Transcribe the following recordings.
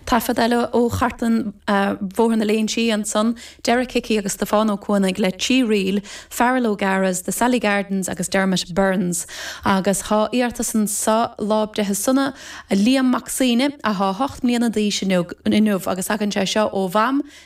Taifead eile ó chartlann Bhóthar na Léinsí ansan, Derek Hickey agus Stiofán Ó Cuanaigh le trí ríl, Farrell O'Gara's The Sally Gardens agus Dermot Byrne's. Agus tá iarratas anso, Lá Breithe Sona, Liam Mac Suibhne, athá hocht mbliana d'aois inniu agus tagann sé seo ó Mham,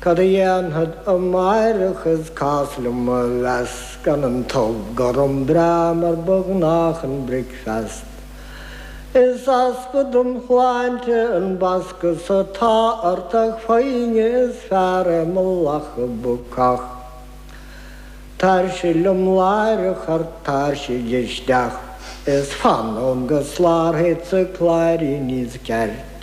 Cad a dhéanfad amáireach is cás liom a mheas gan an t-ubh gorm breá mar ba ghnáth chun bricfeast. Is easpa dom shláinte an bascadh so tá ort ach foighne is fearra mo lacha bacach. Tairsigh liom láithreach ort tairsigh isteach is fan liom go slárthaidsa cláirín níos ceart.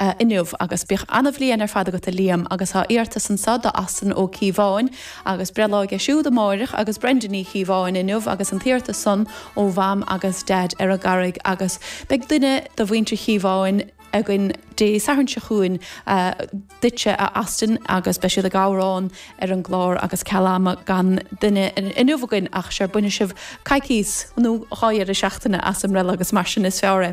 inniu agus bíodh an-bhliain ar fad agat a Liam agus tá iarratas anso do Austin Ó Cíobháin agus breithlá aige siúd amáireach agus Brenda Ní Chíobháin inniu agus an t-iarratas san ó Mham agus Dad ar an gCarraig agus beidh duine do mhuintir Chíobháin againn Dé Sathairn seo chugainn duitse a Austin agus beidh siad ag amhrán ar an gclár agus ceal ama gan duine inniu againn ach sure bainfidh sibh coicíos nó dhá dheireadh seachtaine as i mbreithlá agus mar sin is fearr é.